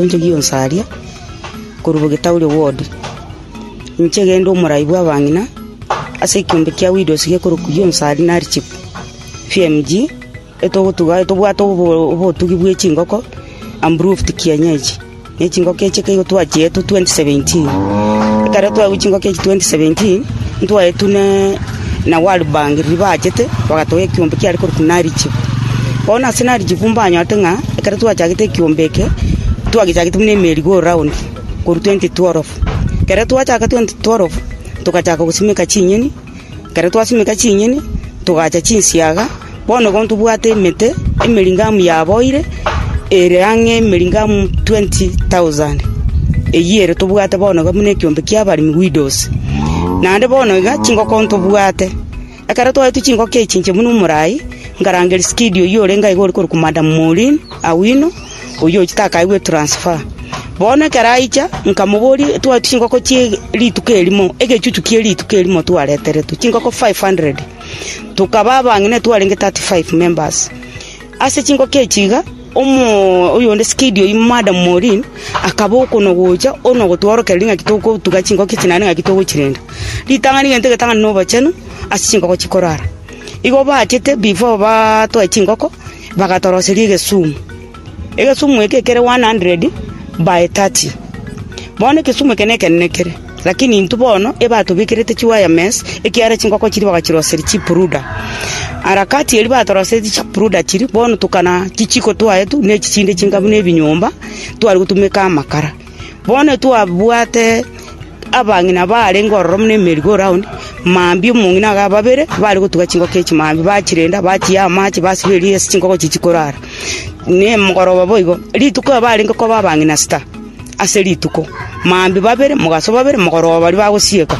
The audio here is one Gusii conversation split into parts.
Gento gionsi aria, korwa bogetauri obw'oria, inche egende omorai bw'abang'ina, ase ekiombe kia Widows gekorokwa gionsi aria nari Chief FMG, etogotuga aye tobwate obotugi bwe chingoko amproved kienyeji, ne chingoko echi ekero twachiete 2017, ekero twagwa chingoko echi 2017, ntwaetwe ne. na Warburg riria baachete, bagatoga ekiombe kiare korokwa Narichibu. Bono ase Narichibu mbanyorete ng'a ekero twachagete ekiombe eke, twagechagete buna emeeri go round korwa 2012. Ekero twachaka 2012, togachaka gosimeka chinyeni, ekero twasimeka chinyeni, togaacha chinsiaga. “Bono igo ntobwate emete emering'amu yaboire, ere ang'e emering'amu twenti tausand. Eyio ere tobwate bono iga buna ekeombe ki'abaremi, widows. Naende bono iga chingoko ntobwate. Ekero twaetwe chingoko echi inche buna omoraai, nkarange Riskidio oyio orenge aiga ore korokwa Madam Maureen Awino, oyio takaegwe transfer. Bono ekero aicha, nkamoboria, twaetwe chingoko chie rituko erimo, egechuchu kie rituko erimo twareteretwe, chingoko five hundred. Tokaba abang'ina twarenge thirty five members. Ase chingoki echi iga, omo oyonde sikedi oyio Madam Morin, akaba okonagocha onagotworokereria ng'aki togotuga chingoki echi naende ng'aki togochirenda. Ritang'ani gento egetang'ani na obochenu ase chingoko chikorara. Igo baachete before batoe chingoko, bagatoroseria egesumu. Egesumu eke kere one hundred by thirty. Bono egesumu eke nekenene kere, lakini intwe bono ebatobikerete chiwirements ekiagera chinkoko chiria bagachiroseria chipruda. Harakati eria batorosetie chipruda chiria, bono tokana chijiko twaye tu ne echi chinde chinkabu ne ebinyomba tware gotumeka amakara. Bono twabwate abang'ina barenge ororo buna emerigoraundi, mambia omong'ina iga babere, bare gotuga chingoko echi mambia, bachirenda, bachia amache, basiba eria ase chingoko echi chikorara. Na emogoroba boigo, rituko aba barenge koba abang'ina sita ase rituko, mambia babere, mogaso babere, mogoroba baria bagosieka.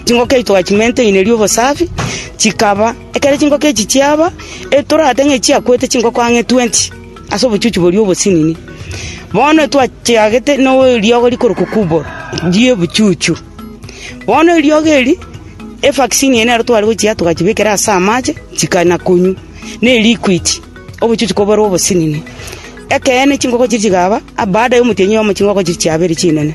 Chingoko echi twachimenteinirie obosafi, chikaba, ekero chingoko echi chiaba, etoratebe ng'a echiakwete chingoko ang'e twenty. Ase obochuchu boria obosinini, bono twachiagete neriogo rikorokwa kubwa ri'obochuchu. Bono eriogo eri, evaccine eye nero tware gochia togachibekera ase amache, chikana konywa, ne liquid, obochuchu koborwa obosinini. Ekeene chinkoko chiria chikaba, baada ya omotienyi oyomo chinkoko chiria chiabere chinene.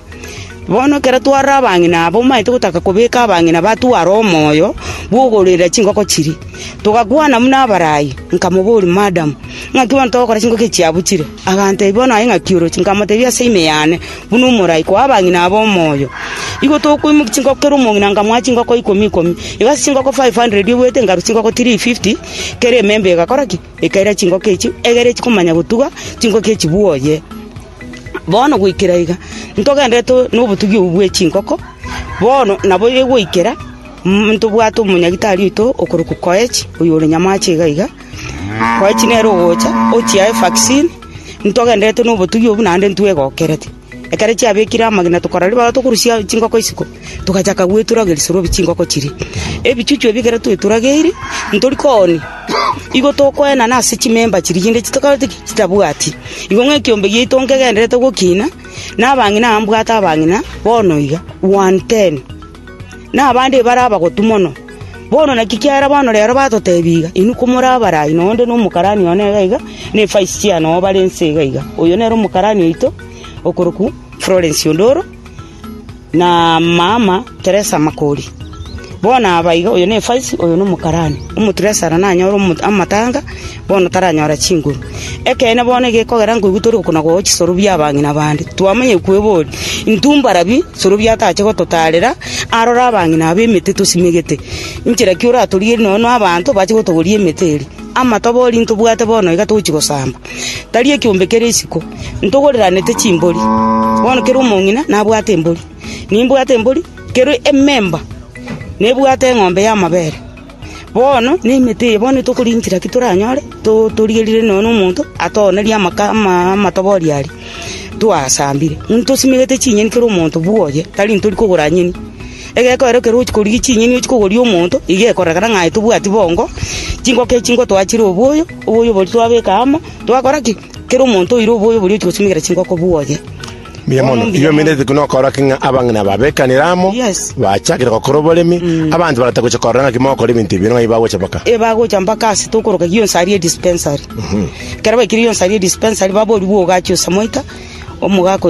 Bono ekero tware abang'ina aba omanyete gotaka kobeka abang'ina ba tware omoyo bw'okororera chingoko chiria. Togakwana buna abarai, nkamoboria, Madam, ng'aki bono togokora chingoko echi chiabuchire? Agantebia, Bono aye ng'aki oroche? Nkamotebia, Ase ime yane, buna omorai, koa abang'ina aba omoyo. Igo tokoimokia chingoko kera omong'ina nkamoa chingoko ikomi ikomi. Igo ase chingoko five hundred oboete nkarwa chingoko three fifty, kera ememba egakora ki? Ekaira chingoko echi, egere chikomanya gotuga chingoko echi bwoye. Bono goikera iga, ntogenderete nobotugi obwo bwe chinkoko, bono nabo egoikera ntobwate omonyagitari oito okorokwa Koech, oyore nyamache iga iga. Koech nere ogocha ochiae vaccine, ntogenderete nobotugi obwo naende ntwegokerete. Ekero chiabekire amagena tokora ribaga tokorusia chinkoko isiko, togachaka gweturageri sorobi chinkoko chiria. Ebichuchu ebi ekero tweturageirie, ntori koonia. Igo tokoenana ase chimemba chiria chinde chitokoreti ki? Chitabwati. Igo ng'a ekiombe giaito nkegendererete gokina, na abang'ina aa mbwate abang'ina bono iga, one ten, na abande ebare abagotu mono. Bono naki kiara bono rero batotebia iga, Inwe komore Abarai, na onde nomokarani one iga iga, na efaisi chiane oo bare inse iga iga. Oyo nere omokarani oito, okorokwa Florence Ondoro. na maama Teresa Makori. Bono aba iga, oyo n'efaisi, oyo nomokarani. Omotiresara nanyore amatanga, bono taranyora chinguru. Ekeene bono egekogera nkoigwa tore oko na goa chisoro bi'abang'ina bande, twamanya kweboria, intwe mbarabi, soro biatache gototaarera aroro abang'ina aba emete tosimegete? Inchera ki oratorigerie nonya na abanto bache gotogoria emete eria? Amatobori ntobwate bono iga togochia gosamba, tari ekiombe kere isiko, ntogoreranete chimbori. Bono kera omong'ina nabwate embori, nimbwate embori, kera ememba nebwate eng'ombe y'amabere. Bono na emete eye bono tokorinchera ki toranyore to- torigerire nonya na omonto atogonerie amaka ama- amatobori aria twasambire. Ntosimegete chinyeni kera omonto bwoye, tari ntori kogora nyeni. Egeko ero ekero ochia korigia chinyeni ochia kogoria omonto, iga ekorekana ng'a aye tobwati bongo, chingoko echi nigo twachire oboyo, oboyo oboria twabeka amo, twakora ki? Kera omonto oire oboyo oboria ochia gosimekera chingoko buoye. Mbuya Bono mono. mbuya Igo mono. emerete ekio nokora ki ng'a abang'ina babekanire amo, Yes. bachakire gokora oboremi, abanto barata gocha korora ng'aki mogokora ebinto ebi, ng'ai bagocha baka. ebagocha mpaka ase tokoroka gionsi aria edispensary ekero baikire gionsi aria edispensary baboria bwogacha osamoita omogaka oyo